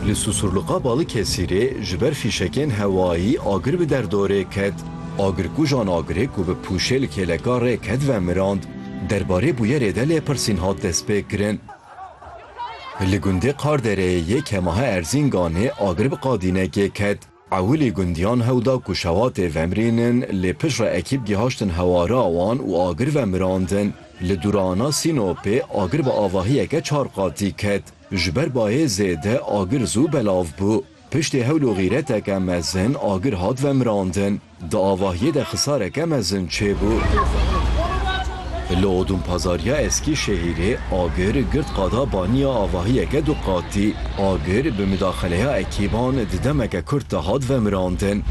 Li Susurluqa Balıkesirê ji ber fîşekên hewayî agir bi derdorê ket. Agirkujan agirê ku bi pûşê li kêleka rê ket vemirand. Derbarê bûyerê de lêpirsîn hat destpêkirin. Li gundê Qardereyê yê Kemahe Erzînganê agir bi qadînekê ket. Ewilî gundiyan hew da ku şewatê vemrînin lê piştre ekîp gihaştin hewara wan û agir vemirandin. Li Durana Sînopê agir bi avahiyeke çar qatî ket. Ji ber bayê zêde agir zû belav bû. Piştî hewl û xîreteke mezin agir hat vemirandin. Di avahiyê de xisareke mezin çêbû. Li Odûnpazariya Eskî Şehîrê agir girt qada baniya avahiyeke du qatî. Agir bi midaxeleya ekîban di demeke kurt de hat vemirandin.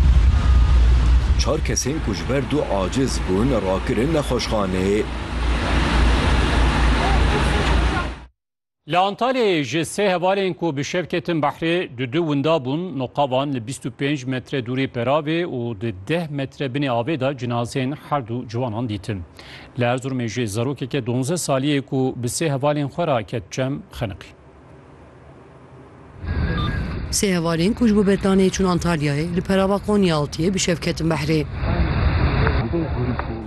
Çar kesên ku ji ber du aciz bûn rakirin nexweşxaneyê. Li Antalyayê ji sê hevalên ku bi şev ketin behrê du du winda bûn, noqa wan li bîst û pênc metre dûrê peravê û di deh metre binê avê de cinazeyên her du ciwanan dîtin. Li Erzurumê jî zarokeke donzdeh salî yê ku bi sê hevalên xwe re ket çem, xeniqî. Sê hevalên ku ji bo betanê çûn Antalyayê li perava Konyaaltiyê bi şev ketin behrê.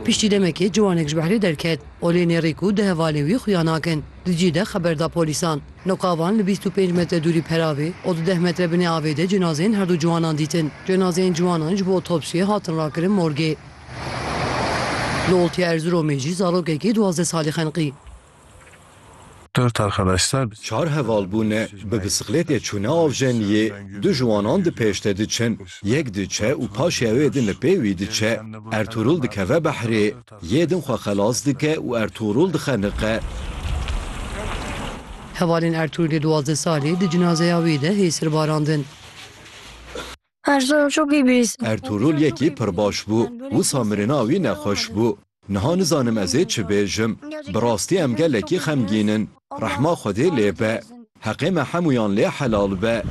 Piştî demekê ciwanek ji behrê derket. Olê nêrî ku di hevalê wî xuya nakin, di cî de xeber da polîsan. Noka van li bîst û pênc metre dûrî peravê û di deh metre binê avê de cenazeyên herdu ciwanan dîtin. Cenazeyên ciwanan ji bo otopsiyê hatin rakirin morgê. Li Oltiya Erziromê jî zarokekî duwazdeh salî xeniqî. Dört arkadaşlar bi. Çar heval bûne, bi bisikletê çûne Avjeniyê, du ji wanan di pêşde diçin, yek diçe û paşê ew ê din li pê wî diçe. Ertûrûl dikeve behrê, yê din xwe xelas dike û Ertûrûl dixeniqe. Hevalên Ertûrûlê duwazdeh salî di cinazeya wî de hê sir barandin. Ertuğrul çok iyi birisi. Ertuğrul yekî pir baş bû. Wisa mirina wî nexweş bû. Niha nizanim ez ê çi bêjim. Bi rastî em gelekî xemgîn in. Rehma Xwedê lê be. Heqê me hemûyan lê helal be.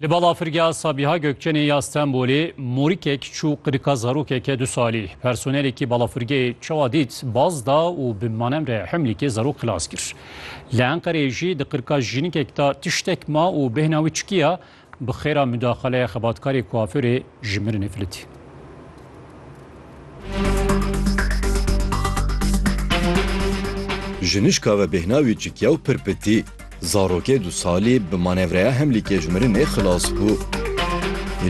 Li balafirgeha Sabiha Gökçenê ya Stenbolê morikek çû qirika zarokeke du salî. Personelekî balafirgehê çawa dît baz da û bi manemre himlîkê zarok xilas kir. Li Enqereyê jî di qirka jînikek de tiştek ma û bêhna wî çikiya bi xêra mudaxaleya xebatkarê kuafirê ji mirinê filitî. Ji nişka ve bêhna wî çikiya û pir pitî. Zarokê du salî bi manevreya hemlîkê ji mirinê xilas bû.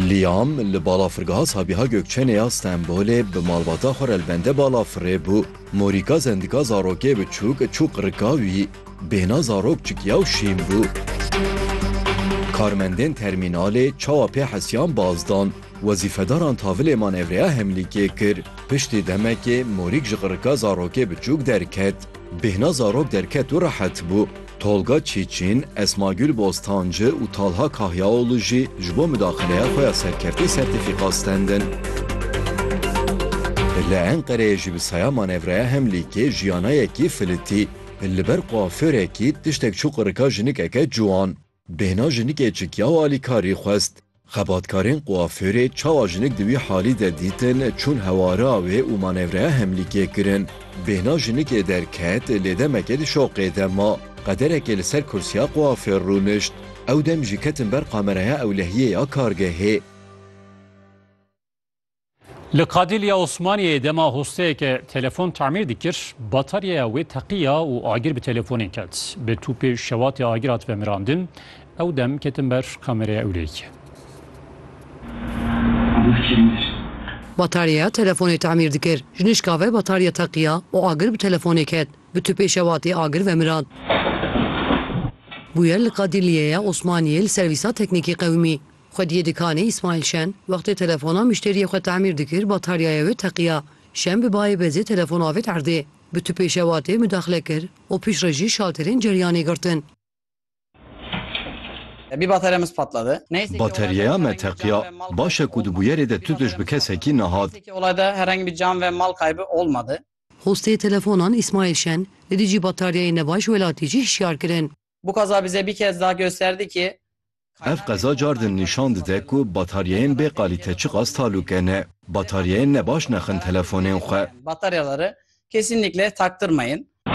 Lîam li balafirgeha Sabiha Gökçenê ya Stenbolê bi malbata xwe re li bende balafirê bû. Morîka zendika zarokê bi çûk çûk rika wî, bêhna zarok çikiya û şîn bû. Karmendên termînalê çawa pê hesiyan baz dan, wezîfedaran tavilê manevreya hemlîkê kir. Piştî demekê morîk ji rika zarokê bi çûk derket. Bêhna zarok derket û rehet bû. Tolga Çiçin, Esmagül Bostancı û Talha Kahyaoğlu jî ji bo midaxileya xwe ya serkeftî sertîfîka stendin. Li Enqereyê jî bi saya manevreya Hemlîkê jiyana yekî filitî, li ber kuaförekî tiştek çû qirika jinikeke ciwan. Bêhna jinikê çikiya û alîkarî xwest. Xebatkarên kuafûrê çawa jinik di wî halî de dîtin, çûn hewara wê û manevreya hemlîkê kirin. Bêhna jinikê derket, lê demekê di şoqê de ma. Qederekê li ser kursiya kuafûr rûnişt. Ew dem jî ketin ber kameraya ewlehiyê ya kargehê. Li Qadîlya Osmaniyê dema hosteyeke telefon tamîr dikir, bataryeya wê teqiya û agir bi telefonê ket. Bi tûpê şewatê agir hat vemirandin. Ew dem ketin ber kameraya ewlehiyê. Bataryeya telefonê tamîr dikir, ji nişka ve batarye teqiya û agir bi telefonê ket. Bi tûpê şewatê agir vemirand. Bûyer li Qadîlyeya Osmaniyê li Servîsa Teknîkî Qewimî. Xwediyê dikanê Îsmaîl Şen wextê telefona muşteriyê xwe tamîr dikir bataryaya wê teqiya. Şen bi bayê bezê telefon avêt erdê. Bi tupê şewatê mudaxile kir û piştre jî şalterên ceryanê girtin. Bataryaya me teqiya. Baş e ku di bûyerê de tu tişt bi kesekî nehat. Hostê telefonan Îsmaîl Şen li dijî bataryayên nebaş welatî jî hişyar kirin. Bu kaza bize bir kez daha gösterdi ki, Ev qeza car din nîşan dide ku bataryayên bê qalîte çiqas talûke ne. Bataryayên nebaş nexin telefonên xwe. Bataryaları kesinlikle taktırmayın.